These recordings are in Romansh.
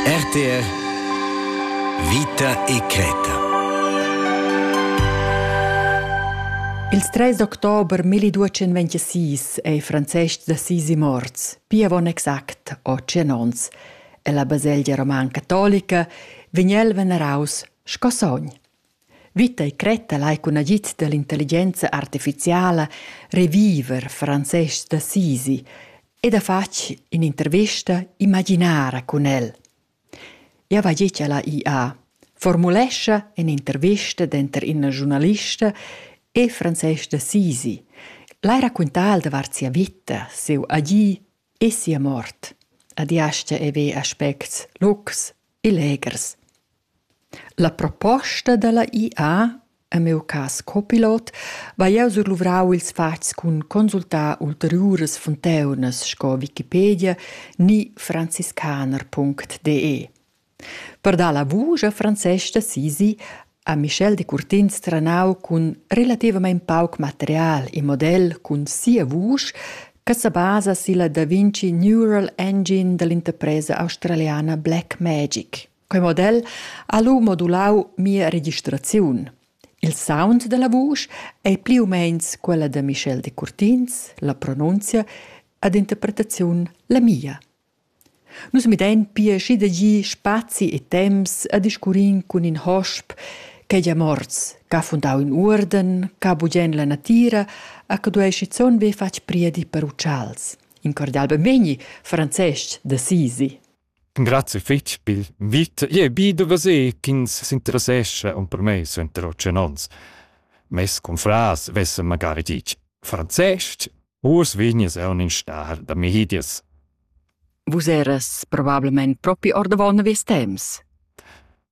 RTR Vita e creta Il 3 d'october 1226 è Francesc d'Assisi morts, pia avon exact 800 onns. E la baselgia roman catolica vegn el veneraus sco sogn. Vita e cretta lai cun agid dall'intelligenza artificiala reviver Francesc d'Assisi ed ha fatg in'intervista imaginara cun el. Eu va dir cha la IA formulescha in'intervista denter ina giurnalista e Francesc d'Assisi, lai raccontar davart sia vita, siu agir e sia mort. La diascha e ve aspects locs e legers. La proposta dalla IA, en miu cass copilot, vai jeu surluvrau ils fatgs cun consultar ulteriuras funteunas sco Wikipedia ni franziskaner.de. Per dar la vusch a Francesca sisi ha Michel Decurtins trenau cun relativamein pauc material e model cun sia vusch che sebasa silla Da Vinci Neural Engine dall'interpresa australiana Blackmagic. Quei model ha lu modulau mia registraziun. Il sound dalla vusch ei pli u meins quella da Michel Decurtins, la pronunzia ad interpretaziun la mia. Nus midein pia schi da gi spazi e temps a discurrin cun in hosp ch'ei gia morts, ch'ha fundau in uorden, ch'ha bugen la natira, a che duei schizun be fatg priedi per utschals. In cordial benvegni, Francesc d'Assisi. Grazie fich pil invit. Jeu bi da veser ch'ins s'interessescha aunc per mei suenter otg onns. Mes confrars vessen magari ditg franzestg, uss vegnis eu in star da Mihidias. Vus eras probablemente propi ordavon vies temps.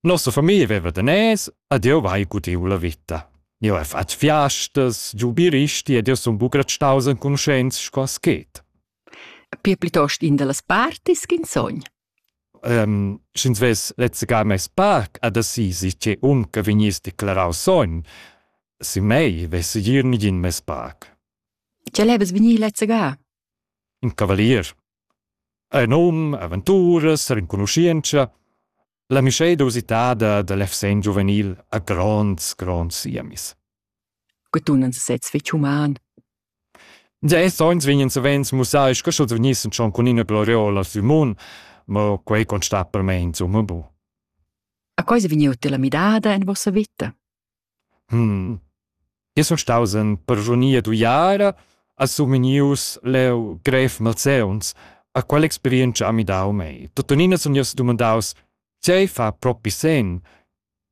Nossa famiglia veva daners ed jeu vai gudiu la vita. Jeu hai fatg fiastas, giu biristi ed jeu sun buca restaus enconuschents sco aschet. Pia plitost in dallas partis ch'ins sogn. Um, Sch'ins vess lezzegar mes parc ad Assisi, tge um che vegniss declarau sogn, sin mei vess gir nigin mes parc. Tge levas vegnir lezzegar? In cavalier. Ei num, aventuras, renconuschientscha. La mischeda usitada da l'FSN giuvenil ha gronds, gronds siemis. Que tunan se sez fich human. Già es oins vegnan savens mussai sco sch'els vegnissen schon cun ina gloriola sü mun, ma quei constat per me insomma bu. A cosa vegniu te la midada en vossa vita? Jeu sun staus en persunia d'uiara, a Sumenius leu grev malseuns. A quella experientscha ha midau mei. Tuttenina sun jeu sedumandaus: Tgei fa propi senn?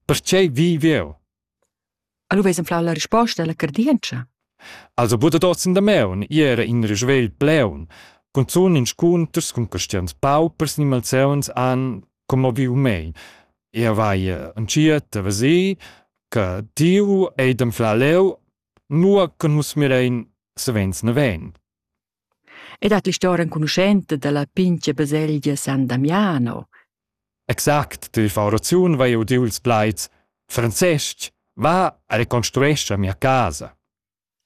Pertgei viv jeu? E lu veis enflau la risposta alla cardientscha? Also buca dad oz in damaun, ì era in risvegl pleun. Cunzun inscunters cun caschians paupers ni malseuns han commoviu mei. Ia vai entschiet a veser che tiu ei d'anflar leu, nua che nus mirein savens naven. E dat l'histora enconuschenta dalla pintga baselgia San Damiano. Exact, ti fa oraziun vai udiu ils plaids Francesc, va a reconstruescha mia casa.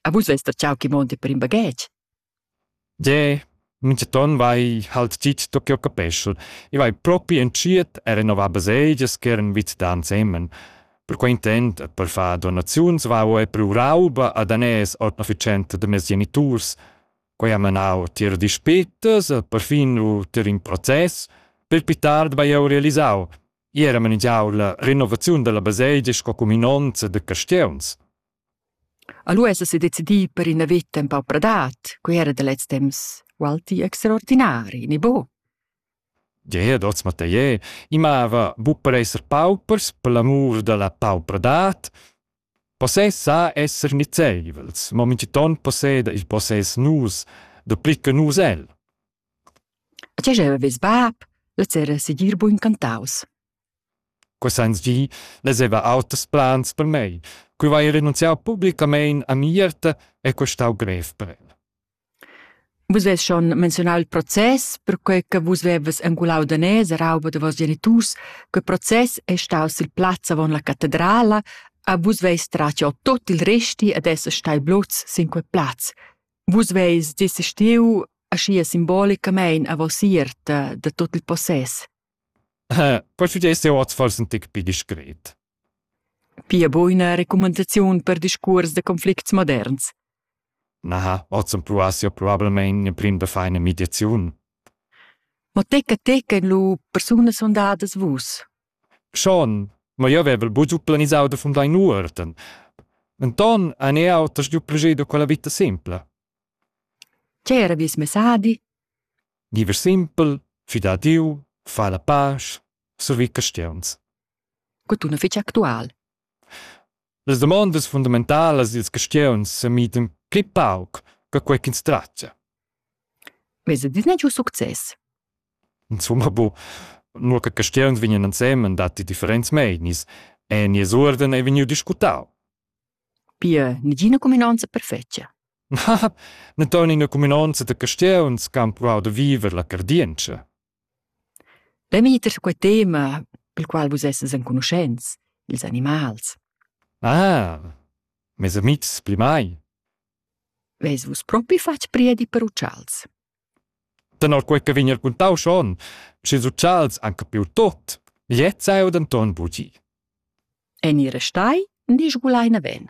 A vus vest der chau chi monte per in baghetg. Jeu minchaton vai halt dit da ch'jeu capeschel. I vai propi entschiet a renovar baselgias ch'eran vit da ensemen. Per quei intent e per far donaziuns vau ei priu rauba a daners ord efficienta da mes geniturs. Quei ha menau tier dispetas e perfin lu tier in process. Per pli tard vai jeu realisau. Iera manegiau la renovaziun dalla baselgia sco cuminonza da caschiuns. A lu esa sedecidi per ina veta empau pradat, quei era da lez temps ualti extraordinari, ni buc? Gie, dots Mathier, i mava buc per esser paupers per l'amur dalla paupradad. Possess sa esser nizeivels, mo mintgiton posseda il possess nus, dapli che nus el. E tgei avevis bab? Lez era segir buc incantaus. Cussagls gi vezeva auters plans per mei. Quei vai renunziau publicamein a Mierta e quei stau grev per el. Vus ves schon menzionau il process, perquei che vus veves engulau daners e rauba da vos geniturs. Quei process è staus il plaz avon la catedrala, a vus veis tratio tot il resti ed esser stai blots sin quei plaz. Vus veis desistiu ascia simbolicamein a vos ierta da tot il possess. Persuenter es eu hoz fors ün tic pü discret. Pia buina recumandaziun per discuors da conflicts moderns? Na, hoz am pruass eu probablmaing prüm da far üna mediaziun. Ma tecca tecca lu persunas fundadas vus? Schon, ma jeu vevel buca giu planisau da fundar in uorden. Enton han eau da stuiu plascher da quella vita simpla. C'era vies messadi? Diever simpel, fidar a Dieu, far la pasch, servir cristians. Cotun fich actual. Las damondas fundamentalas dils cristians s'emitan pli pauc che quei ch'ins tratga. Vez dis n'è giu success. Insomma, bu, nur che cristians vegnan ensemen datti differents meinis, e nies uorden ei vegniu discutau. Pia negina cuminonza perfetga. Ne ton ina cuminonza da castieuns che han pruau da viver la cardientscha. Bemetter su quei tema, pel qual vus essens enconuschents, ils animals. Ah, mes amitgs pli mai. Ves vus propi fatg priedi per utschals? Tenor quei che vegn raquintau schon, sch'ils utschals han capiu tot, gliez ei denton bugi. En ir restai ni sgulai naven.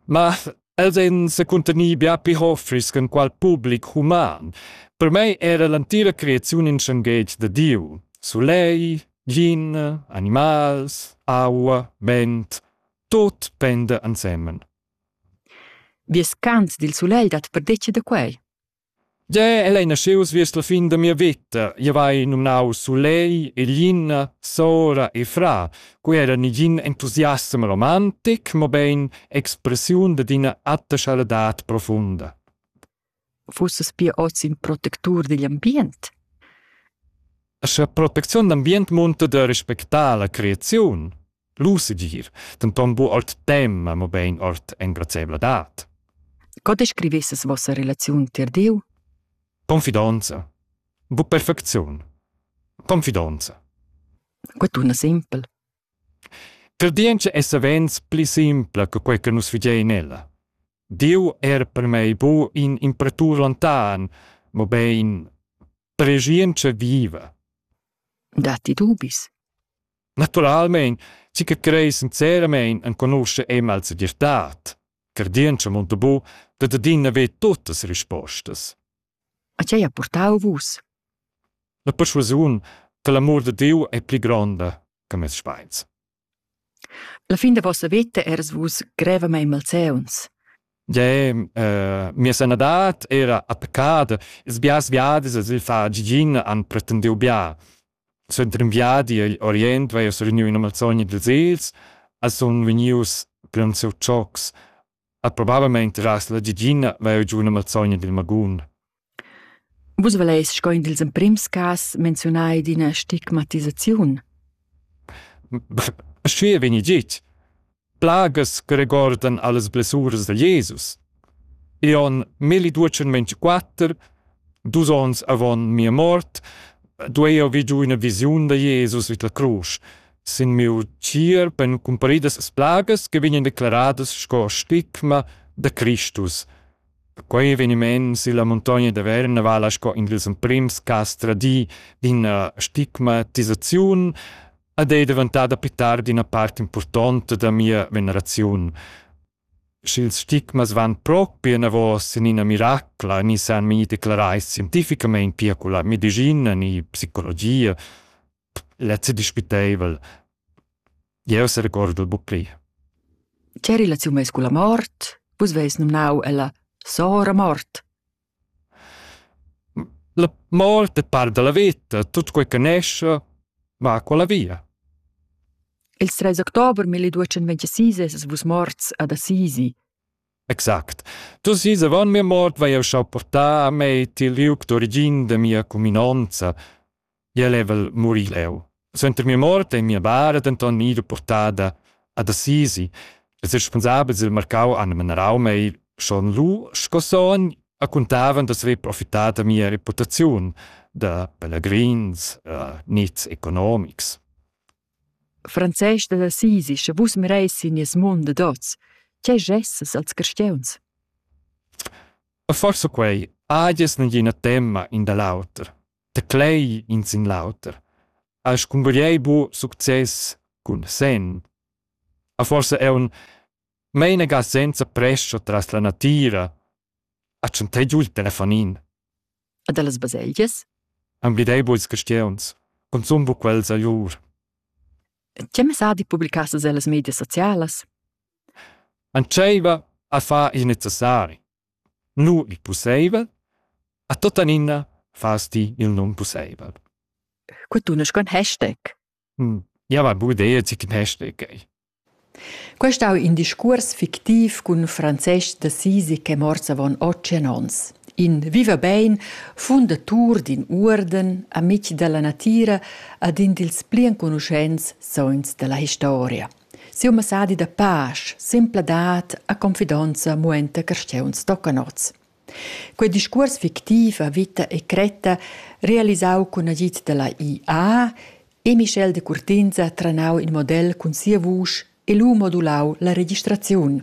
Ma els ein secuntenir bia pli hoffris che qual public human. Per mei era l'entira creaziun in schenghetg de Diu. Sulei, gin, animals, aua, vent, tot penda ensemen. Vies cant dil sulegl dat perdetga da quei? Ge, el ei naschius viers la fin da mia veta. Jeu hai numnau Sulei, Elina, Sora e Fra. Quei era negin entusiasm romantic, mobein expressiun dad ina atta schaladat profunda. fussas pia oz in protectur digl ambient? Scha protecziun d'ambient munta da respectar la creaziun, l'usegir, denton bu ord tema, mobein ord engraziabladad. Co descrivesses vossa relaziun tier Diu? Confidonza. Bu perfecziun. Confidonza. Quei tuna sempel. Credientscha es savens pli simpla che quai che nus fidain ella. Dieu è er per mei bu in impratur lontan, mobein pregientscha viva. Datti dubis? Naturalmein, chi che crei sinceramein enconusce Emma als dirtat. Credientscha munta bu, dat adina ve tuttas rispostas. A tgei ha purtau vus? La perschuasiun che l'amur da Diu ei pli gronda che mes speins. La fin da vossa veta eras vus grevamein malseuns. Jeu, eh, mia sanadad era attaccada, ils biars viadis sil far gigin han pretendiu bia. Suenter in viadi agl Orient vai jeu sereniu ina malsogna dils egls e sun vegnius plaunsiu tschocs. At probabelmaing tirast la Gigina vair giù üna mazzogna dil magun. Vus voleis sco in dils emprims cas menziunar ed ina stigmatisaziun. Schue vegni git. Plagas che regordan allas blessuras da Jesus. I on 1224, dus ons avon mia mort, duei eu vi giu üna visiun da Jesus vid la crusch, Sin miu tier pon cumparidas plagas che vegnan declaradas sco stigma da Cristus. Quei eveniment silla muntogna da Verna vala sco in dils emprims cass tradii d'ina stigmatisaziun ed ei daventada pli tard ina part impurtonta da mia veneraziun. Sch'ils stigmas van propi enavos in ina miracla, ni san mi declarai scientificamein pia con la medicina ni psicologia, lezzi dispiteivel. Jeu serecordo buc pli. Che relaziun meis culla mort? Vus veis nomnau ella Sora mort. La mort è par della vita, tutto quel che nesce va con la via. Il 3 october 1226 es vus morts ad Assisi. Exact. Tu si avant mia mort vai eu schau portar a me til liuc d'origin de mia cuminanza. jeu level murir leu. Suenter mia mort ei mia bara denton ira portada ad Assisi. Les responsabels del marcau han menarau mei schon lu sco son a contavan d'asver profitat da mia reputaziun da pelegrins uh, nits economics. Frances da Assisi, sche vus mereis in nies mund de dots, che gesses als cristiuns? Forse quei, adies nagina temma in da l'auter. Teclei in sin l'auter, has cungugliei buc success cun senn. A forsa aunc meinaga senza prescha tras la natira, ha tschantei giu il telefonin. E dallas baselgias? Emblidei buc ils castieuns, consum buc quels a lur. Tgei messadi publicassas ellas medias socialas? Entscheiva a far il necessari. Nu il pusseivel, a tuottanina fas ti il non pusseivel. Quei tunesch con hashtag. Hm, ja va bu idea zic in hashtag ei. Quest ha in discuors fictiv cun Francesc d'Assisi che morts avon otg ons. In viva bein, fundatur d'in uorden, amic dalla natira ed in dils pli enconuschents sogns dalla historia. Siu messadi da pasch, sempladad e confidonza muenta carstgauns toccanots. Quei discuors fictiv a vita e cretta, realisau cun agid dalla IA, e Michel de Curtinza tranau in model cun sia vusch e lu modulau la registraziun.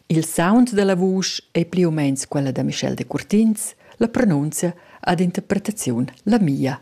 Il sound dalla vusch ei pli u meins quella da Michel de Curtins, la pronunzia ad interpretaziun la mia.